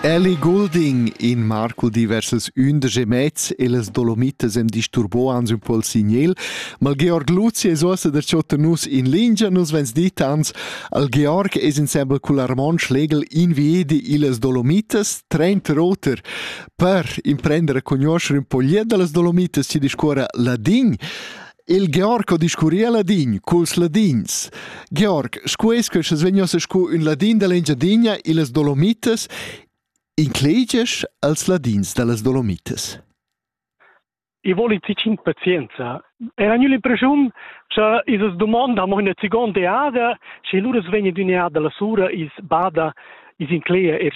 Elly Goulding, in marco diversas undisch mez e las Dolomitas am disturbò ans ün po'l signel, ma il Georg Luzi es uossa darcho tenus in lingia, nus vegns dit ans, al Georg es insembel cul Armon Schlegel inviedi illas Dolomitas, trenta roter, per imprender a cugnuoscher ün po glied da las Dolomitas, chi discuorra ladin. Il Georg discurria ladin culs ladins. Georg, sco es que sche vegnas scu ün ladin da l'Engiadinha illas Dolomitas, incleges als ladins da las Dolomitas? I voli ti cinc pazienza. Era gnü l'impressiun cha isas domanda amo üna seconda eada, sche lura vegna d'ün'eada la sura is bada is incleia er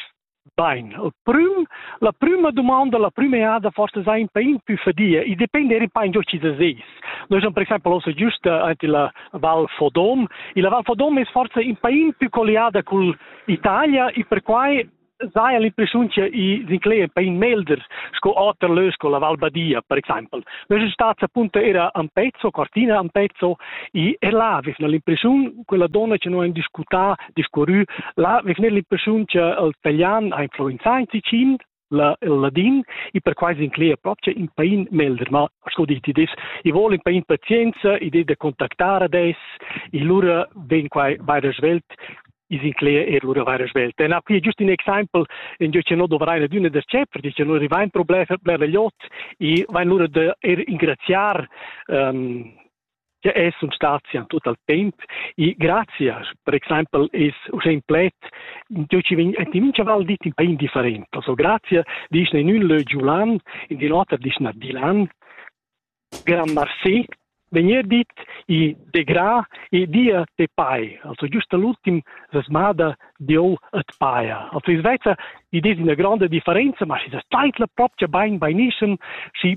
Bain, il prüm, la prüma dumonda, la prüma eada forse sai un pain più fadia, e depende eri pain giò ci da seis. Noi siamo per esempio ossa giusta ante la Val Fodom, e la Val Fodom es forse un pain più colliada col Italia e perquai sai l'impressione che i sinclair un pain melder sco oter lö sco la Val Badia per esempio. Noi siamo stati appunto era a Pezzo, Cortina a Pezzo e er là avevano l'impressione quella donna che noi hanno discutat discurrü. Là vegner l'impressiun che il italian ha influenzà in Ticin, la, il ladin, e perquai s'inclegia proprio in pain melder, ma sco diti des, i vuol in pain pazienza, idea da contactar adesso, e lura ven quai vaira svelt, is incleia er lura vaira svelt. E na pli just in example, in gio che no dovrai na d'una der cepper, dice lura rivain problema per l'iot, e vain lura da er ingraziar um, che è sun statia tut al temp e grazie per exempel es uschè in pled dove ci vegn e ti mincha val dit in pain different also grazie disch in ün lö giulan in di noter disch na dilan gran marsi vegnir dit e de gra e dia te pai also giusto l'ultim resmada dieu et paia also is vezza id es ina grande differenza ma si sa zeitla propcha bain bainischen si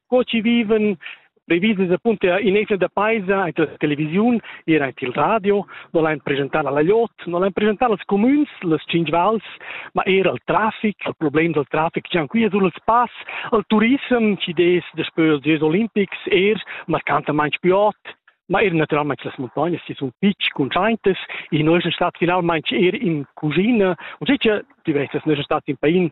co ci viven previses appunto in esel da paisa in la televisiun era in il radio non l'han presentar alla Jot non l'han presentar als comüns las cinc vals ma era al traffic al problem del traffic gian qui sul spass al turism ci des de spöl des olimpics er marcantamente più hot ma er naturalmente las montagnes si sun fitch constantes in noi sind stat finalmente er in cucina und sicher diverses noi sind stat in pain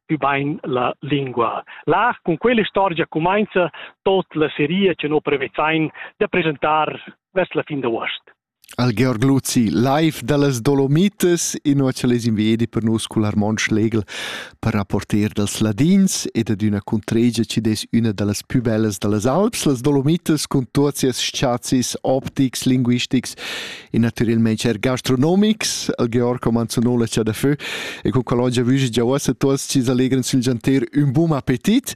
ubain la lingua. Là, cun quell'istorgia cumainza tot la seria che no prevezain da presentar vers la fin d'uost. Al Georg Luzi, live da las Dolomites, inua che les invedi per nus cul Armon Schlegel per rapporter dels ladins ed ad üna cuntregia ci des üna da las pü bellas da las Alps, las Dolomites, cun tuot sias sciazis optics, linguistics in natürelmaing er gastronomics, al Georg Comanzonola cha da fö, e con qual oggi vüge già uossa tuots ci allegran sül gianter ün bun appetit.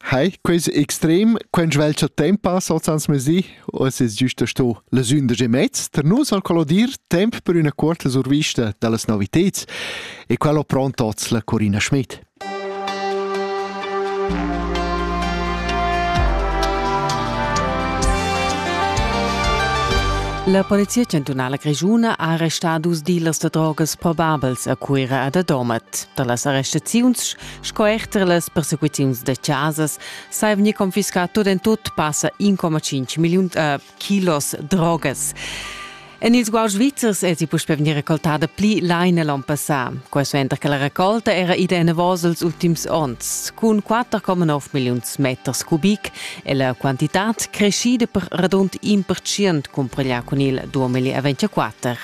Hai, quais extrem, quant svelt cha temp passa als ans mesi, o es es giusta sto las undisch e mezz, per nus al collodir temp per üna cuorta survista da las noviteds, e qual ho pront oz la Corina Schmidt. La Polizia chantunala grischuna ha arrestà dus dealers da drogas probabels a Cuira ed a Domat. Da las arrestaziuns sco er da las persecuziuns da chasas s'è vegnì confiscà tut en tut passa 1,5 milliun, äh, kilos drogas. En ils guauds svizzers èsi puspè vegnì recoltada pli laina l'onn passà. Quai suenter che la recolta era ida enavos els ultims onns. Cun 4,9 milliuns meters cubic è la quantitad creschida per radund in percent cumpareglià cun il 2024.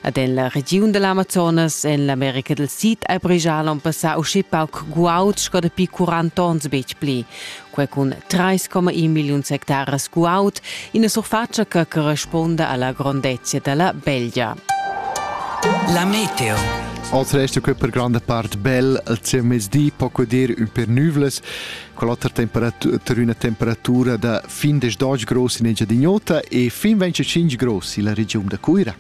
Ad en la regiun dall'Amazonas en l'America del Sid ei bregia l'on passà uschi pauc guaud sco dapi 40 onns betg pli. Quei cun 3,1 milliuns hectares guaud, ina surfatscha che corresponda alla grondezia dalla Belgia. La meteo. Oltre resta qui per grande part bel al mezdi, poco dir un per nuvles. Quell'otra temperatura, ter üna temperatura da fin des 10 grossi in Engiadin'Ota e fin 25 grossi la regiun da Cuira.